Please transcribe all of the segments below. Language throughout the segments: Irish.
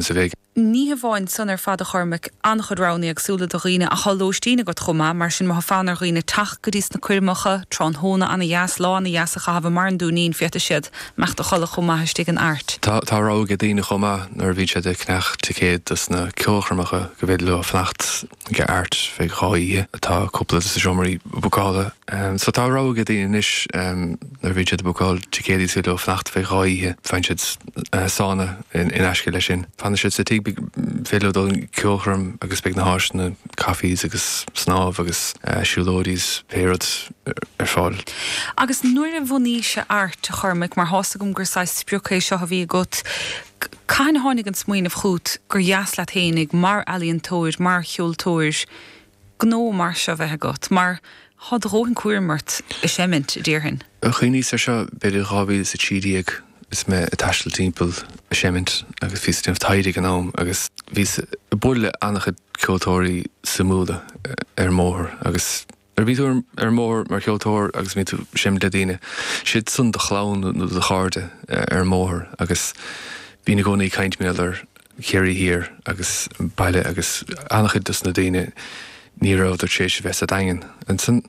agus a bhí ag. Ní hamháin san ar fad, a Chormaic, an-chuid roghanna éagsúla do dhaoine ach tá lóistín agat chomh maith, mar sin má tha fonn ar dhaoine teacht go dtí sna coirmeacha, tráthnóna an-dheas, lá an-dheas a chaitheamh i mBarr an Dúinín, féadfaidh siad imeacht a chodladh chomh maith istigh in Airt. Tá tá rogha ag daoine chomh maith nuair a bhíonn siad ag ceannach ticéad dos na ceolchoirmeacha go bhféidir leo fanacht. Ag Airt feadh dhá oíche atá cúpla de na seomraí bucálta so. Tá a rogha ag daoine anois nuair a bhíonn siad ag bucáil ticéadaí is féidir leo fanacht feadh dhá oíche, faigheann siad sána in aisce leis sin. Fanann siad sa tigh, féidir leo dul an ceolchoirm agus beidh na háiseanna, cafes agus snámh agus siúlóidí's pé rud ar fáil. Agus nuair a bhunaís-se Airt, a Chormaic, mar thá's agam gur saghas sprioc é seo a bhí agat, Cathain a tháinig an smaoineamh chút gur dheas leat fhéinig, mar ealaíontóir, mar cheoltóir, gnó mar seo bheith agat, mar tá do dhóthain cúraim ort ag seimint, a déarfainn? Chuimhníos air seo b'fhéidir 2013 is mé ag taisteal timpeall ag seimint agus bhíos ag déanamh taighde ag an am agus bhíos ag bualadh le an-chuid ceoltóirí suimiúla ar an mbóthar agus Nuair a bhí tú ar an mbóthar mar cheoltóir agus bhí tú ag seinm le daoine, siadsan do chlann nó do chairde ar an mbóthar agus bhínn i gcónaí ag caint mar gheall ar Chiarraí Thiar agus an baile agus an-chuid dos na daoine ní rabhadar tar éis a bheith sa Daingean. Ansan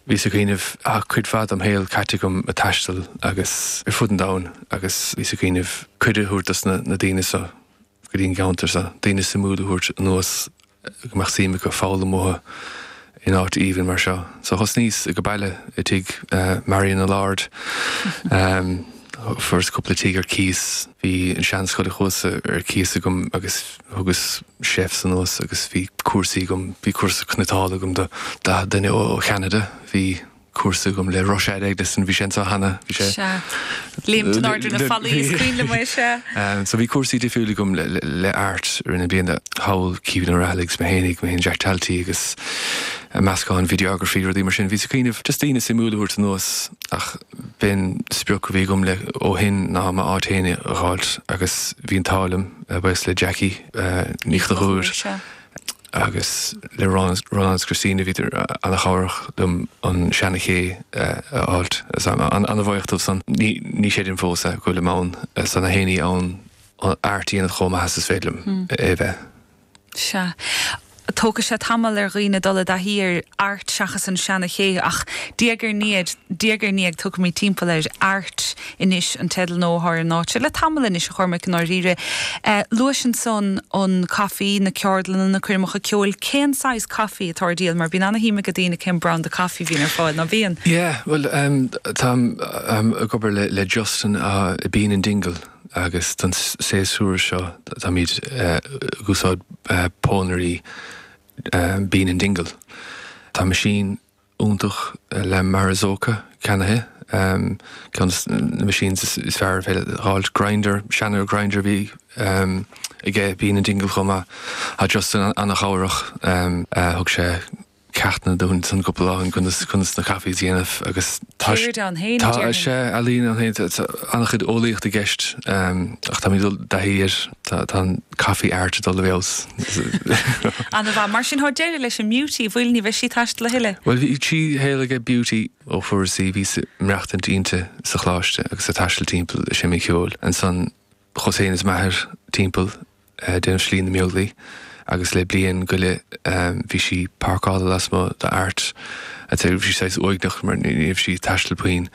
bhíos ag cuimhneamh, tá cuid mhaith dom shaol caite agam ag taisteal agus ar fud an domhain agus bhíos ag cuimhneamh cuireadh a thabhairt dos na daoine so, go dtí an gceantar seo, daoine suimiúil a thabhairt anuas go mbeadh suim acu foghlaim uathu in áit aoibhinn mar seo. So thosnaíos aige baile i dtigh Marian a Lord. Fuaireas cúpla tigh ar cíos, bhí an seanscoil an Chuasa ar cíos agam agus thugas chefs anuas agus bhí cúrsaí agam, bhí cúrsa cniotála agam do 40 duine ó Cheanada, bhí. cúrsa agam le Rushad Eggleston bhí sé anso cheana bhí sé. Sea. Léim in airde ar na Fallaí is cuimhin liom é sea. So bhí cúrsaí difriúil agam le le Airt i rith na bliana, Howell, Caoimhín Ó Raghallaigh is mo fhéinig, mo fhéin Jack Talty agus a meascán videography rudaí mar sin bhíos ag cuimhneamh just daoine suimiúil a thabhairt anuas ach b'in sprioc a bhí agam le ó shin ná m'áit fhéin a dh'fháilt agus bhí an t-ádh liom a bheith le Jackie Ní Chonchúir. agus le Ronan is Cristín a bhíodar an-chabhrach liom an seana-ché a fháilt. An-bhaoch dóibh san. Ní chreidim fós é, go bhfuilim ann, san na héin í ann Airt a dhéanamh chomh maith is is féidir liom é a bheith. Sea. Tógfaidh sé tamall ar dhaoine dul i dtaithí ar Airt seachas an seana-ché, ach diaidh ar ndiaidh, diaidh ar ndiaidh, tiocfaimid timpeall air. anois ag taisteal nó thar an áit seo le tamall anois, a Chormaic, i ndáiríre. Luais ansan an caife, na ceardlanna, na coirmeacha ceoil. Cén saghas caife atá ar díol? Mar bíonn ana-shuim ag daoine cén brand de chaife a bhíonn ar fáil, ná bíonn? Yeah, bhuel, táim ag obair le Justin i Bean in Dingle agus don séasúr so táimid ag úsáid pónairí Bean in Dingle. Tá machine. iontach La Marzocco ceannaithe, ceann de na machines is fearr ar féidir a fháilt, grinder, seana-ghrinder a bhí aige Bean in Dingle chomh maith, tá Justin an-chabhrach, thug sé ceachtanna dúinn ansan cúpla lá ann conas na coffees a dhéanamh agus tá sé, Ceird ann fhéin, a déarfainn. Tá sé, ealaín ann fhéin, tá an-chuid eolaíocht i gceist ach táimid ag dul i dtaithí air, tá an. coffee art ag dul i bhfeabhas. Ana mhaith. Mar sin tá deireadh leis an mBeauty, bhfuil? Ní bheidh sí ag taisteal a thuilleadh. Bhuel, bhí trí shaol aige Beauty. Ó fuaireas í, bhíos i m'mhaireachtaint inti sa choláiste agus ag taisteal timpeall ag seimint ceoil. Ansan chuas féin is m'athair timpeall ag déanamh Slí na mBeaglaí agus le bliain go leith bhí sí páirceálta lasmuigh d'Art a' Tí. Bhí sí saghas uaigneach mar ní raibh sí ag taisteal puinn.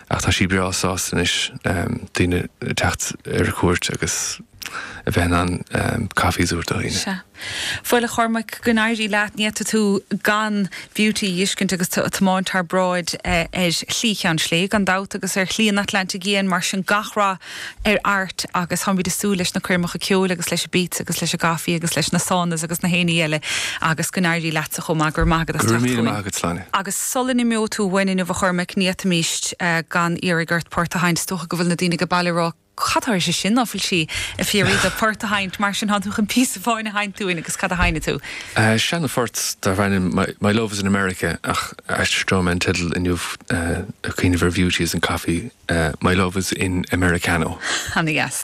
Ach tá sí breá sásta anois daoine ag teacht ar cuairt agus. a bheith in ann caife a thabhairt do dhaoine. Sea. Bhuel, a Chormaic, go n-éirí leat. Ní fhéadfaidh tú gan Beauty a fhiscint agus tú ag tiomáint thar bráid ar Shlí Cheann Slé, gan dabht, agus ar Shlí an Atlantaigh Fhiáin. Mar sin, gach rath ar Art agus táimid ag súil leis na coirmeacha ceoil agus leis an bpíotsa agus leis an gcaife agus leis na saunas agus na héinní eile agus go n-éirí leatsa chomh maith. Go raibh maith agat as teacht chugainn. Go raibh míle maith agat, Sláine. Agus sula n-imeoidh tú uainn inniu, a Chormaic, ní fhéadfaimis gan iarraidh ort port a sheinnt. Is dócha go bhfuil na daoine ag baile ag rá, Cad tá uirthi sin? Ná fuil sí ag fiafraí de port a sheinnt, mar sin, tá tú chun píosa amháin a sheinnt dúinn agus cad a sheinnfidh tú? Seinnfidh mé port darbh ainm My Love is in America ach aistreoidh mé an teideal inniu ag cuimhneamh ar Bheauty is an Coffee, My Love is in Americano. Ana dheas.